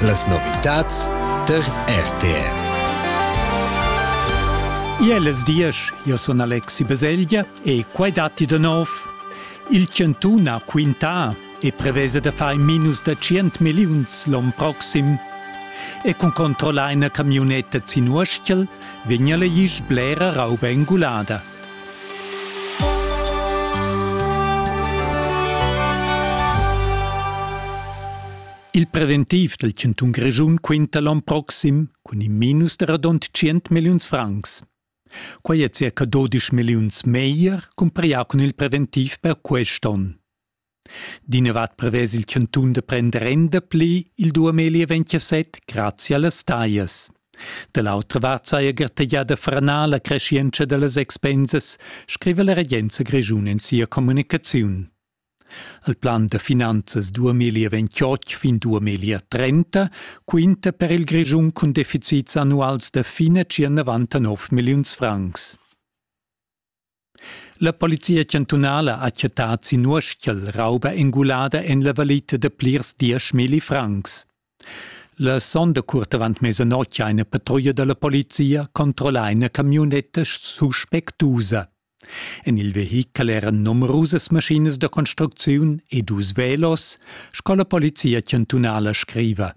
Las novitads tar RTR. Iel es diesch, io sun Alexi Baselgia e quai datti da nov. Il chantun ha quintà e prevesa da far in minus da 100 milliuns l'on proxim. E cun controllar ina camionetta sin Uorstiel vegna la isch blera rauba engulada. Il preventiv dal chantun Grischun quinta l'on proxim cun in minus da radund 100 milliuns francs. Quai è circa 12 milliuns meglier cumparà cun il preventiv per quest onn. D'inavat prevess il cantun da prender renda pli il duameli ventasett grazia las taglias. Da l'autra vart saja gartegiada franar la crescientscha da las expensas, scriva la regenza grischun en sia communicaziun. Il plan da finanzas 2028 fin 2030 quinta per il Grischun cun deficits annuals da fine circa 99 milliuns francs. La polizia chantunala ha chattà sin uestgel rauba engulada en la valita da plirs dieschmilli francs. La sonda curt avant mesanotg ha ina patrulla da la polizia controllà ina camionetta suspectusa. En il vehichel eran numerusas maschinas da construcziun e dus velos, sco la polizia chantunala scriva.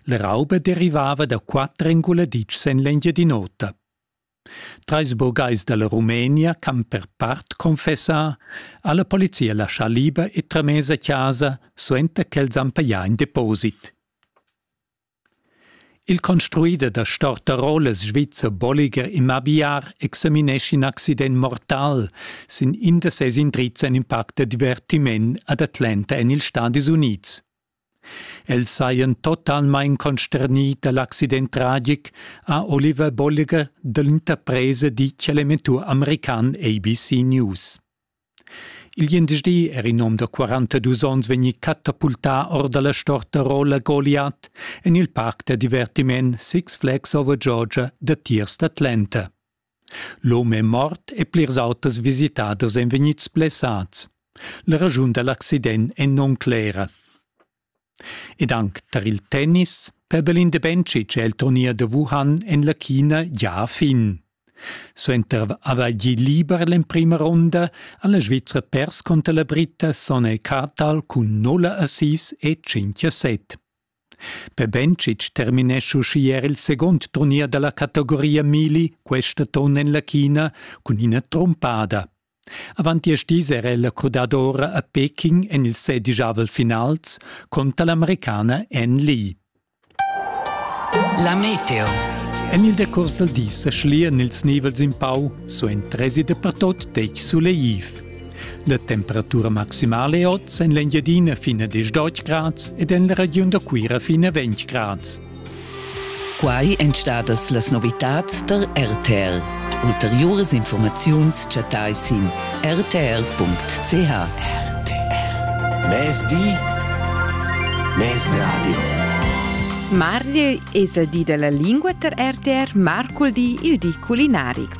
La rauba derivava da quatter enguladitschs en l'Engiadin'Ota. Trais burgais da la Rumenia ch'han per part confessà ha la polizia laschà liber e tramess a chasa suenter ch'els han pajà in deposit. Il construider da stortarolas svizzer Bolliger Immobiliar examinescha in accident mortal sin in da ses indrizs en in parc da divertiment ad Atlanta en ils Stadis Unids. Els sajan totalmain consternì da l'accident tragic, ha Oliver Bolliger dell'interpresa ditg a l'emettur american ABC News. Il gliendisdi era in hom da 42 onns vegnì catapultà or da la storta rolla Goliath en il parc da divertiment Six Flags Over Georgia datiers d'Atlanta. L'hom è mort e plirs auters visitaders èn vegnids blessads. La raschun da l'accident è non clera. Ed anc tar il tennis Perdalin de Bencic è il turnier da Wuhan en la China gia a fin. Suenter avair gì liber l'emprima ronda ha la Svizra pers conter la Britta Sone Kartal cun 0 assist e 5 a 7. Bebencic terminescha uschi er il segund turnier dalla categoria mili questa ton en la China cun ina trumpada. Avant diesch dis era ella crudadora a Peking en il sedigiavel finals contra l'americana Ann Lee. La meteo. En il decurs dal dis sa schlian ils nivels in pau, so en tresi dapertot detg suleiv. La temperatura maximala è oz en l'Engiadina fin a 10 grads ed en la regiun da Cuira fin a 20 grads. Quai èn stadas las novitads tar RTL. Ulteriuras informaziuns chattai sin rtl.ch. RTL. Mezdi. Mezradio. Mardi es il di della lingua ter RTR Marcul di il di culinaric.